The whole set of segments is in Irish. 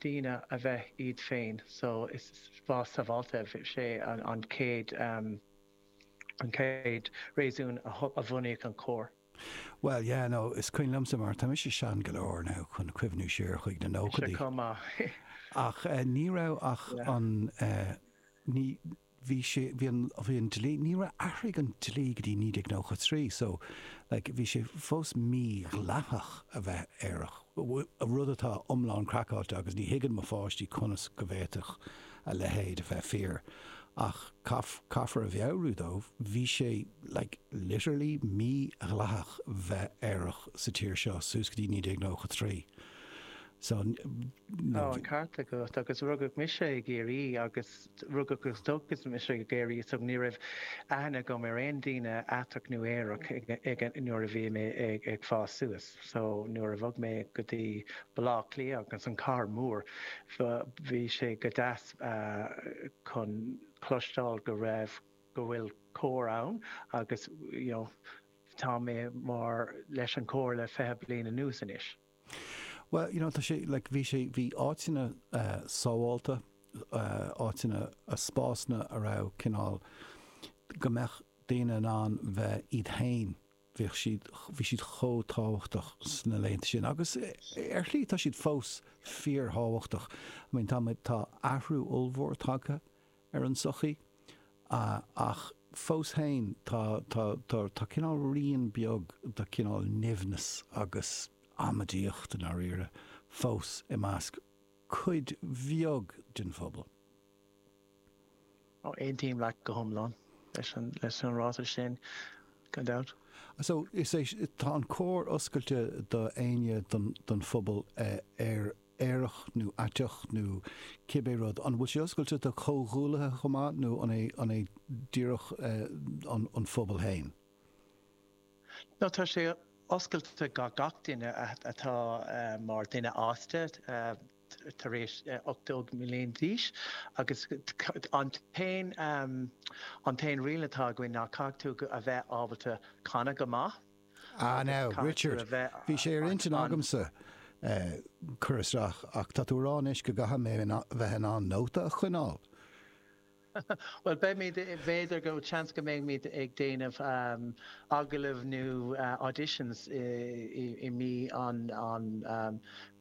daoine a bheith iad féin so is spás sábháilte é sin an chéad an chéad réasún a bunaíodh an cór. Bhuel yeah no is cuimhin liomsa mar tá mise sean go leor now chun cuimhniú siar chuig na nóchaidí ach ní raibh ach an ní bhí sé, bhí an, bhí an dlí, níor athraigh an dlí go dtí 1993 so like bhí sé fós mí-dhleathach a bheith aerach, rud atá iomlán craiceáilte agus ní thuigeann mo pháistí conas go bhféadfadh a leithéid a bheith fíor ach caithfear a mheabhrú dóibh, bhí sé like literally mí-dhleathach bheith aerach sa tír seo suas go dtí 1993 so you know. Tá an ceart agat agus rugadh mise i gCiarraí agus. T, Rugadh agus tógadh mise i gCiarraí so ní raibh aithne agam ar aon daoine aiteach nó aerach ag an nuair a bhí mé ag ag fás suas. So nuair a bhog mé go dtí Baile Átha Cliath agus an cathair mór bh bhí sé go deas ah chun cloisteáil go raibh go bhfuil cór ann agus you know tá mé mar leis an cór le fiche bliain anuas anois. Bhuel, you know, tá sé, like, bhí sé, bhí áiteanna sábháilte, áiteanna, spásanna a raibh cineál, go mbeadh daoine in ann bheith iad féin, bhíodh siad, bhí siad chomh tábhachtach sna laethanta sin agus ar shlí tá siad fós fíorthábhachtach. I mean, tá muid, tá athrú ollmhór tagtha. ar an sochaí ach fós féin tá tá cineál rian beag de cineál nimhneas agus amaidíocht i ndáiríre fós i measc cuid bheag den phobal. Aontaím leat go hiomlán leis an ráiteas sin gan dabht. So is é tá an cór oscailte do éinne den phobal ar aerach nó aiteach nó cibé rud, an bhfuil sé oscailte do chomhghuaillithe chomh maith nó an é díreach an phobal féin? No tá sé oscailte do gach duine atá mar dhuine fhásta tar éis 18 mbliain d'aois agus an t-aon riail atá againn ná caithfidh tú a bheith ábalta canadh go maith. Ah now, Richard, bhí sé ar intinn agamsa cur isteach ach tá tú a rá anois go gcaithfidh mé bheith in ann nóta a choinneáil! Bhuel, beimid, b'fhéidir go, seans go mbeimid ag déanamh agallaimh nó auditions i mí an.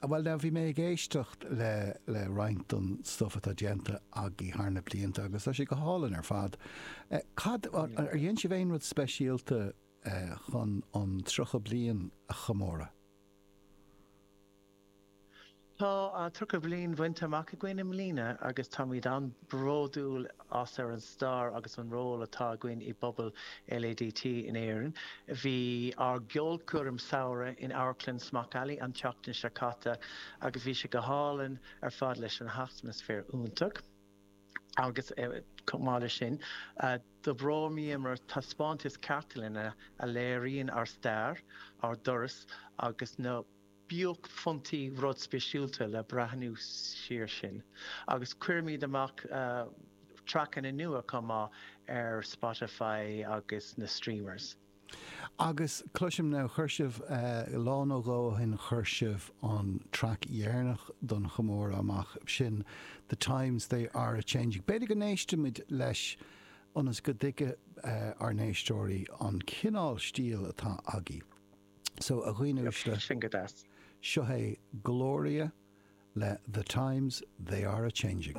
Ah bhuel now bhí mé ag éisteacht le, le roinnt don stuff atá déanta agaibh thar na blianta agus tá sé go hálainn ar fad. Eh, cad, ar dhéan sibh aon rud speisialta eh chun an tríocha bliain a chomóradh? Tá an tríocha bliain bainte amach againn i mbliana agus táimid an-bródúil as ar an stair agus an ról atá againn i bpobal LADT in Éirinn. Bhí ár gceolchoirm samhraidh in Amharclann Smock Alley an tseachtain seo caite agus bhí sé go hálainn ar fad leis an atmaisféar iontach agus chomh maith leis sin d'oibríomar taispeántas cartlainne a léiríonn ár stair, ár dturas agus na. buaicphointí rud speisialta le breathnú siar sin agus cuirimid amach traiceanna nua chomh maith ar Spotify agus na streamers. Agus cloisim now chuir sibh, lá nó dhó ó shin chuir sibh an traic dheireanach don chomóradh amach, sin The Times They Are A Changing. B'fhéidir go n-éistfimid leis ionas go dtuigfidh ár n-éisteoirí an cineál stíl atá agaibh. So, a dhaoine uaisle, seo é Gloria le The Times They Are A Changing.